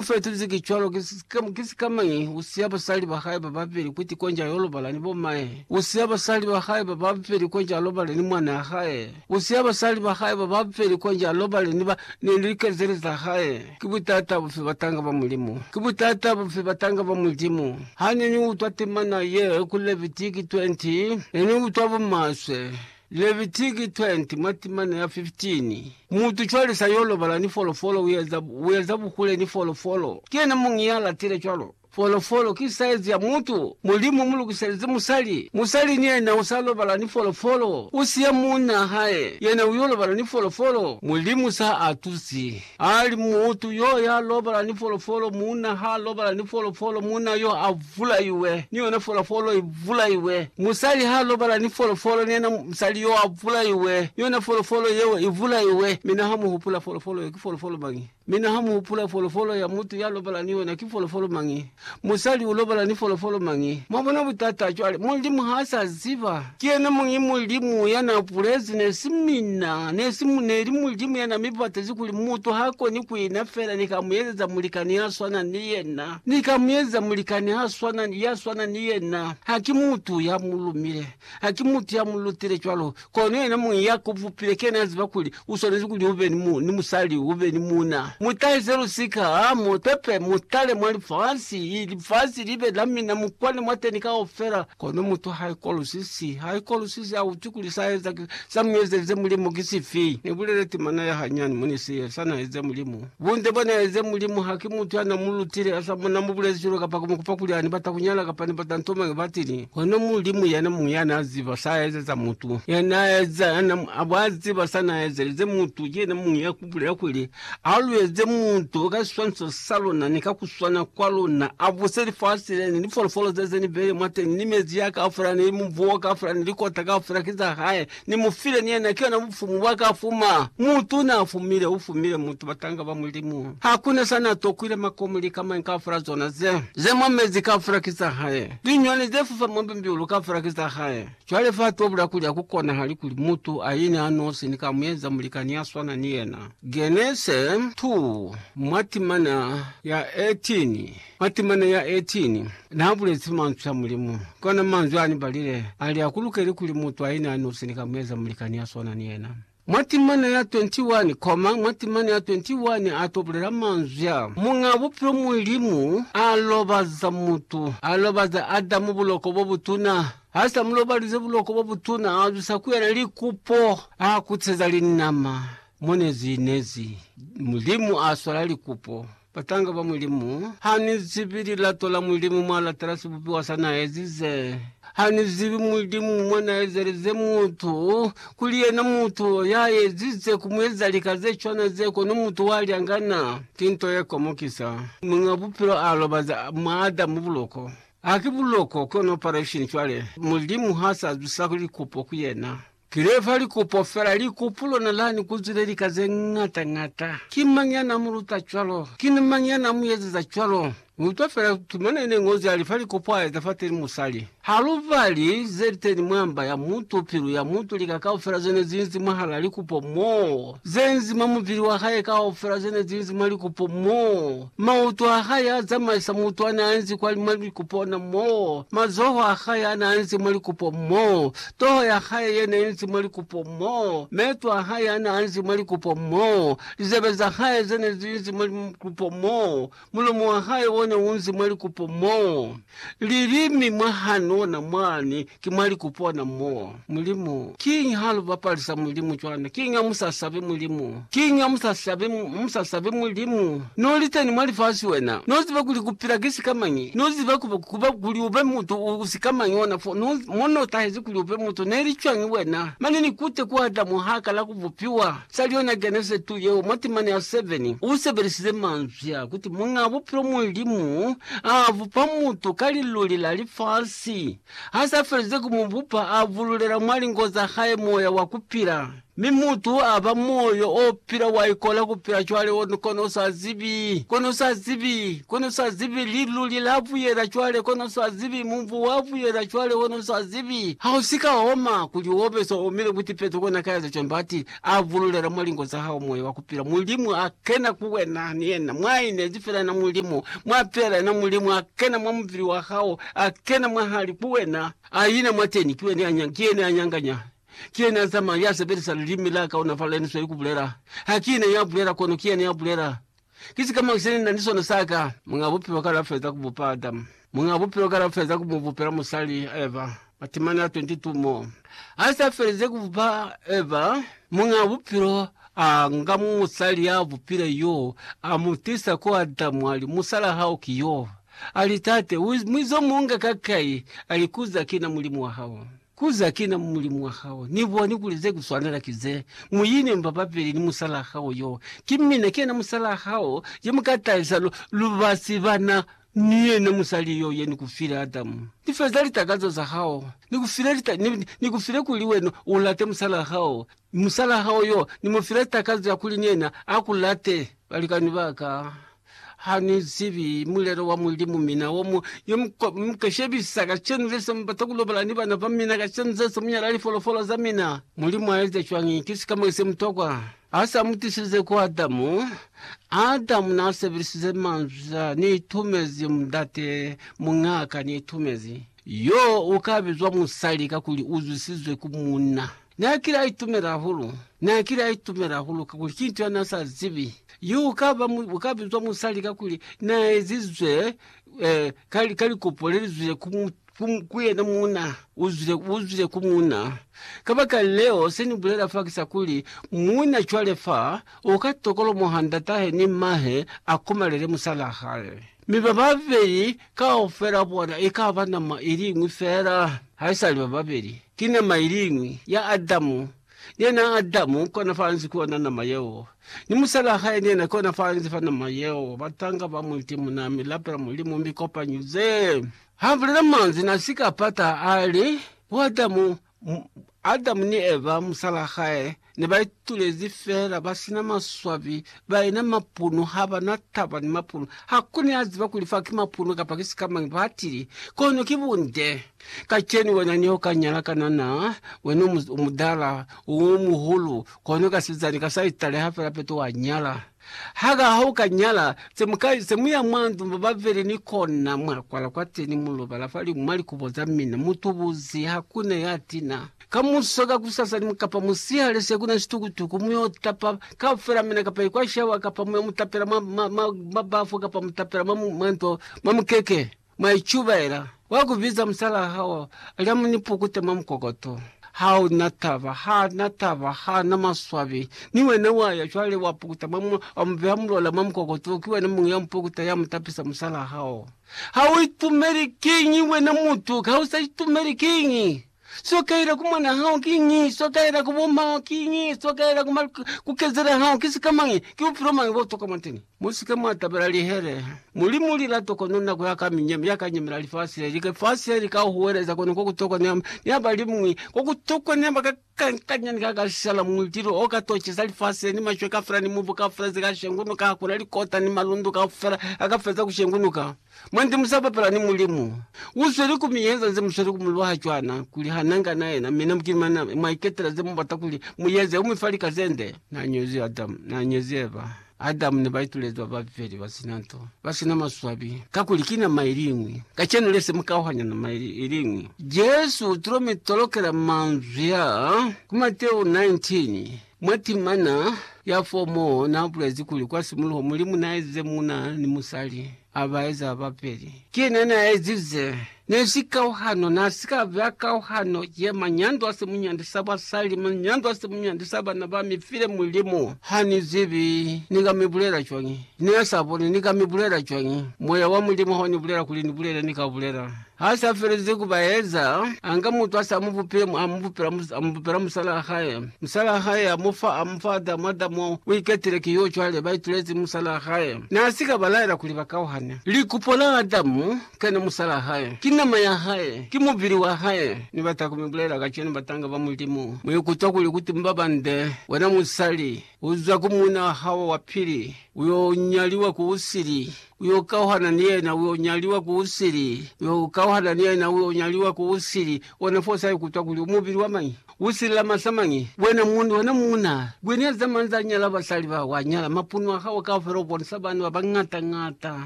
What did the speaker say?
U fetezi ki cwalo, ki sika, ki sika mañi, u siya basali ba hae ba babeli ku tiko nja yo lobala ni bomae. U siya basali ba hae ba babeli ko nja lobale ni mwanaa hae. U siya basali ba hae ba babeli ko nja lobale ni ba, ni likezeli za hae. Ki butata bufi batanga ba Mulimu? Ki butata bufi batanga ba Mulimu? Ha ne ni utwa temana ye ku Levitiki 20, ne ni utwa bumaswe. Levitiki 20 mwa timana ya 15 Mutu cwale sa yo lobala ni folofolo, u eza, u eza buhule ni folofolo. Ki yena muñi ya latile cwalo? Folofolo ki saizi ya mutu. Mulimu mu lukiselezi musali. Musali ni yena u sa lobala ni folofolo. U siya muuna hae, yena u yo lobala ni folofolo. Mulimu sa a tusi. Ali, Mutu yo ya lobala ni folofolo, muuna ha lobala ni folofolo, muuna yo a vulaiwe, ni yona folofolo i vulaiwe. Musali ha lobala ni folofolo, ni yena musali yo a vulaiwe, ni yona folofolo yeo i vulaiwe. Mi na ha mu hupula folofolo yeo ki folofolo mañi? Mi na ha mu hupula folofolo ya mutu ya lobala ni yona ki folofolo mañi? Musali u lobala ni folofolo mañi? Mwabona butata cwale? Mulimu ha sa ziba. Ki yena muñi Mulimu ya na bulezi, ne si mina, ne si, ne li Mulimu ya na mi batezi kuli mutu ha koni ku ina fela ni ka mu ezeza mulikani ya swana ni yena. Ni ka mu ezeza mulikani ha swana, ya swana ni yena. Ha ki mutu ya mu lumile. Ha ki mutu ya mu lutile cwalo, kono yena muñi ya ku bupile kena ya ziba kuli u swanezi kuli u be ni, mu, ni musali, u be ni muuna. Mu tahise lusika, ha mu pepe, mu tale mwa lifasi, i, lifasi li be la mina, mu kwane mwateni kaufela. Kono mutu ha ikolusisi, ha ikolusisi, ha utwi kuli sa eza, sa mu ezelize Mulimu ki sifi. Ni bulele timana ya hanyani, mone se, sa na eza Mulimu. Bunde bwa na eza Mulimu ha ki mutu ya na mu lutile, a sa mu na mu bulezi cwalo kapa ku mu kupa kuli a ni bata ku nyala kapa ni bata nto mañi batili. Kono Mulimu yena muñi ya na ziba sa a ezeza mutu. Ya na eza, ya na a bwa ziba sa na ezelize mutu. Ki yena muñi ya ku bulela kuli, A lu eze mutu ka siswaniso sa luna ni ka ku swana kwa luna, a buse lifasi le, ni lifolofolo ze ze ni bele mwateni, ni mezi ya kaufela, ni mubu o kaufela, ni likota kaufela ki za hae. Ni mu file ni yena, ki yona bufumu bwa ka fuma. Mutu na fumile, u fumile mutu, batanga ba Mulimu. Ha ku na sa na tokwile makomo, lika mañi kaufela zona ze, ze mwa mezi kaufela ki za hae. Liñwani ze fufa mwa mbilu kaufela ki za hae. Cwale fa tobula kuli ha ku konahali kuli mutu a ine a nosi ni ka mu eza mulikani ya swana ni yena. Genese 2, mwa timana ya 18. Matemana ya 18 naabulezi manzwi a Mulimu, kona manzwi aanibalile ali akulukeli kuli mutu aine anosi nikamueza mulikani yaswana ni yena. Matemana ya 21 koma matemana ya 21 ato bulela manzwi a, Muñaa Bupilo Mulimu alobaza mutu, alobaza Adamu buloko bobutuna, hasa mulobalize buloko bobutuna, azwisa ku yena likupo, akuteza linama, monezi inezi, Mulimu aswala likupo. Batanga ba Mulimu. Ha ni zibi lilato la Mulimu mwa latela sibupiwa sa na ezize. Ha ni zibi Mulimu mwa na ezelize mutu, kuli yena mutu ya ezize ku mu eza lika ze cwana ze, kono mutu wa lyangana. Ki nto ye komokisa. Muñ'a Bupilo a lobaza mwa Adamu buloko. Haki buloko, kono operation cwale. Mulimu ha sa zwisa likupo ku yena. Ki lefa likupo fela, likupu lona lani ku zwile lika ze ñata ñata. Ki mañi ya na mu luta cwalo? Ki ni mañi ya na mu eziza cwalo? Ni utwa fela tumana ine Ñozi ya lifa likupu a eza fateni musali. Ha lu bali ze liteni mwa mba ya mutu, pilu ya mutu, lika kaufela zene zinzi mwahala likupo moo, zenzi mwa mubili wa hae kaufela zene zinzi mwa likupo moo, mautu a hae a zamaisa mutu ane a enzi kwa mwa likupo ona moo, mazoho a hae ane a enzi mwa likupo moo, Toho ya hae ye ne inzi mwa likupo mo, meeto a hae a ne a nzi mwa likupo mo, lizebe za hae ze ne zi inzi mwa likupo mo, mulomo wa hae o ne u nzi mwa likupo mo, lilimi mwa han'ona mwani ki mwa likupo na mo. Mulimu, kiñi ha lu bapalisa Mulimu cwana? Kiñi ha mu sa sabi Mulimu? Kiñi ha musa sabi Mulimu? No liteni mwa lifasi wena, no ziba kuli kupila ki sikamañi, no ziba kuba kuli ube mutu u sikamañi ona fo mo no tahezi kuli ube mutu neli cwañi wena. Mane ni kute ku Adamu ha kala ku bupiwa, sali yona Genese 2 yeo mwa timana ya 7, u sebelisize manzwi a kuti Muñaa Bupilo Mulimu a bupa mutu ka liluli la lifasi. Ha sa felize ku mu bupa, a bululela mwa lingo za hae moya wa kupila. Mi mutu aba moyo o pila wa ikola kupila cwale o kono usa zibi, kono usa zibi, kono usa zibi, liluli la buyela cwale, kono usa zibi, mubu wa buyela cwale, kono usa zibi. Ha u si ka oma, kuli obe so omile ku tipeto kona ka eza cwani, bati, A bululela mwa lingo za hao moyo wa kupila, Mulimu a kena ku wena, ni yena, mwa inezi fela yena Mulimu, mwa pela yena Mulimu, a kena mwa mubili wa hao, a kena mwahali ku wena, a ina mwateni, ki yene ya nyanganya. Ki yena ya zamaya, ya sebelisa lilimi la kaonafala leni sweli ku bulela. Ha ki ne ya bulela, kono ki yena ya bulela. Ki sikamañi se ni na ni sona sa ka? Muñ'a Bupilo kale a feza ku bupa Adamu. Muñ'a Bupilo kale a feza ku mu bupela musali, Eva. Matimani a 22 mo. Ha s'a felize ku bupa Eva, Muñ'a Bupilo a nga musali ya bupile yo, a mu tisa ku Adamu, a li, Musala hao ki yo. A li, Tate, u mwizo mu nga ka kai? A li, Kuza ki na Mulimu wa hao. Ku za kina mu mulimu wa hao, ni boni kuli ze ku swanela ki ze, Mu ine mba babeli ni musalaa hao yo. Ki mina, ki yena musalaa hao, ye mu ka tahisa lu, lu ba si bana ni yena musali yo, ye ni ku file, Adamu. Ni feza litakazo za hao. Ni ku file lita, ni, ni ku file kuli wena u late musalaa hao, Ni musala hao yo, ni mu file takazo ya kuli ni yena a ku late. Balikani ba ka, ha ni zibi mulelo wa Mulimu, mina wo mu yo mu ka, mu ka shebisa kacenu ze se mu bata ku lobala ni bana ba mina, kacenu ze se mu nyala lifolofolo za mina. Mulimu a eza cwañi? Ki sika mwa se mutokwa. Ha sa mu tisilize ku Adamu, Adamu na sebelisize manzwi a, Ni itumezi mundate, muñaa ka ni itumezi. Yo u ka bizwa musali kakuli u zwisizwe ku munna. N'a kile a itumela hahulu. N'a kile a itumela hahulu kakuli ki nto ya n'a sa zibi. Yo u ka ba, u ka bizwa musali kakuli n'a ezizwe eh, ka, ka likopo le li zwile ku, ku, ku yena muuna. U zwile, u zwile ku muuna. Kabakaleo, se ni bulela fa ki sa kuli, muuna cwale fa, u ka tokolomoha ndat'ahe ni m'mahe a komalele musal'a hae. Mi bababeli kaufela bona ikaba nama iliñwi feela, haisali bababeli, ki nama iliñwi, ya Adamu, ni yena Adamu kona faanzi ku yona nama yeo, ni musalaa hae ni yena kona faanzi fa nama yeo, batanga ba muiti muna mi lapela Mulimu mi kopanyize. Ha bulela manzwi na sika pata, ali, Bo Adamu, Adamu ni Eva, musalaa hae, ne ba itulezi feela ba sina maswabi, ba ena mapunu, ha ba na taba ni mapunu. Ha ku ni a ziba kuli fa ki mapunu kapa ki sikamañi, ba tili, Kono ki bunde. Kacenu wena ne u ka nyala kanana, wena u mutala, u muhulu, kono kasizani ka sa italeha feela peto wa nyala. Ha ka ha u ka nyala, se mu ka ize, mu ya mwa ndu mba ba vele ni kona, mwa kwala kwateni, mu lobala fali mwa likubo za mina, mu tubuzi, ha ku na ya tina. Kamuso, kakusasa, ni kapa musihale, se ku na situkutuku, mu yo tapa kaufela mina, kapa ikwa shawa, kapa mu yo mu tapela mwa, mwa, mwa, mwa bafu, kapa mu tapela mwa, mwa ndo, mwa mukeke. Mwa icubaela kwa ku biza musalaa hao lya mu ni pukute mwa mukokoto. Ha u na taba, ha na taba, ha na maswabi. Ni wena wa ya cwale wa pukuta mwa mwa, wa mu beha mulola mwa mukokoto wo. Ki wena muñwi ya mu pukuta, ya mu tapisa musalaa hao. Ha u itumeli! Kiñi wena mutu, ha u sa itumeli? Kiñi? Seo kaela ku mwan'a hao kiñi? Seo kaela ku bo mao kiñi? Seo kaela ku ma, ku kezela hao ki sika mañi? Ki bupilo mañi bo tokwa mwateñi? Mu si ke mwa tabela lihele. Mulimu lilato kono nako ya ka minyemi, ya ka nyemela lifasi le, lifasi le li ka huweleza kono ko ku tokwa ne, ne ba li mwi, ko ku tokwa ne ba ka kankanya ni ka ka shala mulilo o ka toceza lifasi le, ni mashwe kafela, ni mubu kafela ze ka shengunuka, ha ku na likota ni malundu kafela a ka feza ku shengunuka. Mwandi musa bapela ni Mulimu. U zweli ku mi yenza nze musweli ku mu lwaha cwana kuli ha na nga na yena, mi na mukini mana mwa iketela ze mu bata kuli mu yeze. U mi fa lika ze nde. Na ñozi Adamu, na ñezi Eva. Adamu ne ba itulezi ba babeli ba sina nto, ba sina maswabi, kakuli ki nama iliñwi. Kacenu le se mu kauhanya nama iliñwi. Jesu u tulo mi tolokela manzwi aa ku Mateu 19. Mwa timana ya fomo na bulezi kuli kwa simuluho Mulimu na ezize muuna ni musali, a ba eza babeli. Ki yena na ezize. Ne si kauhano, na si ka ba kauhano ye manyando a simunyandi sa basali, manyando a simunyandi sa bana ba mi file Mulimu. Ha ni zibi ni ka mi bulela cwañi. Ne a sa boni ni ka mi bulela cwañi. Moya wa Mulimu ha u ni bulela kuli ni bulele, ni ka bulela. Ha sa felezi ku ba eza, a nga mutu a sa mu bupile, a mu bupela musalaa hae. Musalaa hae a mu fa, a mu fa Adamu. Adamu u iketile ki yo, cwale ba itulezi musalaa hae. Na si ka ba laela kuli ba kauhane. Likupo la Adamu ke ne musalaa hae, ki nama ya hae, ki mubili wa hae. Ni bata ku mi bulela kacenu, batanga ba Mulimu, mu ikutwa kuli ku timba bande, wena musali. Uza ku muna hao wa pili, uyo nyaliwa ku usili, uyo kauhana ni yena, uyo nyaliwa ku usili, uyo kauhana ni yena, uyo nyaliwa ku usili. Ona fo sa ikutwa kuli umubili wa mañi, usili la masa mañi. Wena mundu, wena muna, kwi ni ya zamani za nyala basali bao, wa nyala, mapunu a hao kaufela ubonisa bana ba bañata-ñata.